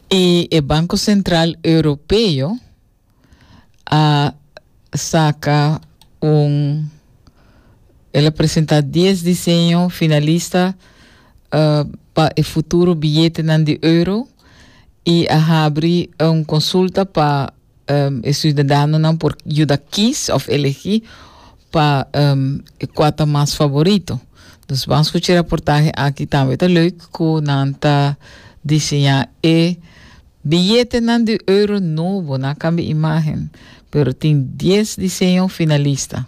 I e Banco Central Europeo a saca un, el a presenta dies diseño finalista eh, pa e futuro billetenan di euro i a habri un consulta pa E siudadanonan por yuda kis òf elegí pa e kua ta mas favorito. Dus ban skucha e raportahe aki. Tambe ta leuk ku nan ta diseñá e biyetenan di euro nobo. Nan kambia imágen, pero tin dies diseño finalista.